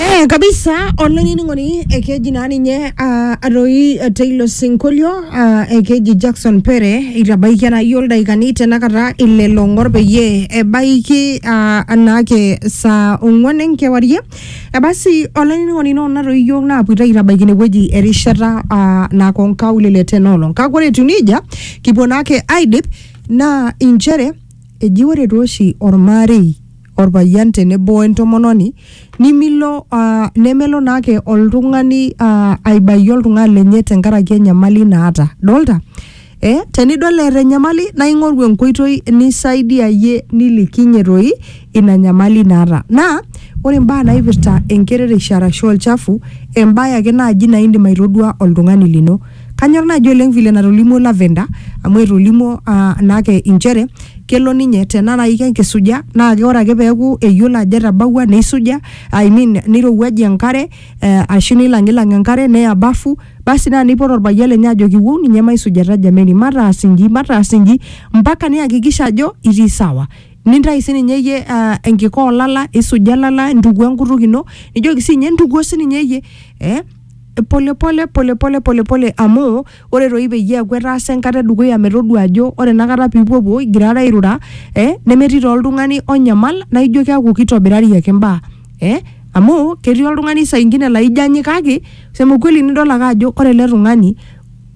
Eh, kabisa olainining'oni ekeji naa ninye ah, atoi eh, teilo sinkolio ah, ekeji Jackson Pere itabaikia naa yiol daikani tenakata ile long'or peyie ebaiki ah, anaake saa ong'uan enkewarie ebasi olainining'oni ino natoi yiok naapuita aitabaiki inewueji erishata ah, nako nkaulele tenoolong kake ore etiu nejia kipuo naake aidip naa inchere eji ore tooshi ormarei orpayian tenebo wentomononi nimilo uh, nemelo naake oltung'ani uh, aibayie oltung'ani lenye tenkaraki enyamali naata dolta eh, tenidol eeta enyamali naa ing'oru enkoitoi nisaidiayie nilikinye toi ina nyamali naata naa ore imbaa naipirta enkerereisho arashu olchafu embaye ake naaji naa indim aitodua oltung'ani lino Kanyor naaji oleng vile natolimuo Lavender amu etolimuo uh, naake inchere kelo ninye tena naaji kenkisuja naa ke ore ake peeku eyiolo ajo etabawua neisuja I mean neirowuajie enkare eh, ashu neilang'ilang enkare neya bafu basi naa neipot orpayian lenye ajoki wou ninye maisujata jameni mataas inji mataas inji mpaka niyakikisha ajo itii sawa nintai sininye iyie uh, enkika olala isuja ilala intukuo enkutuk ino nijoki siinye intukuo sininye iyie eh, polepole polepole polepole amu ore toi peyie eeku etaasa enkata edukuya metodua ajo ore enakata pipuopuo igirara airura eh, nemetii taa oltung'ani onyamal naijo keeku kitobirari ake imbaa eh, amu ketii oltung'ani saa ingine laijo anyikaki sema ukweli nidol ake ajo ore ele tung'ani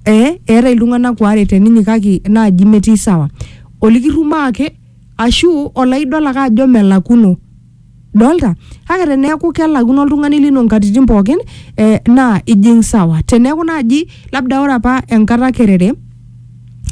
eh, eetae iltung'anak waare teninyikaki naaji metii sawa olikirrumaa ake ashu olaidol ake ajo melakuno. dolta kake teneeku kelakuno oltung'ani lino nkatitin pookin eh, naa ijing sawa teneeku naaji labda ore apa enkata kerere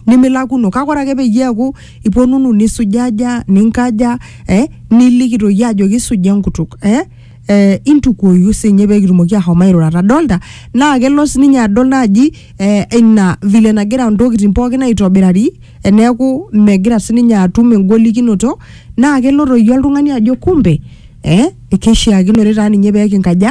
nimilakuno kake ore ake peyie eeku iponunu nisujaja ninkaja eh, niliki toi ajoki suja enkutuk eh, eh, intukuoyu sinye pekitumoki ahom airurata dolta naa kelo sininye adol naaji eh, ina vile nagira ntokitin pookin aitobirari eneeku megira sininye atum engolikinoto naa kelo toi oltung'ani ajo kumbe eh, keishiakinore taa ninye pekinkaja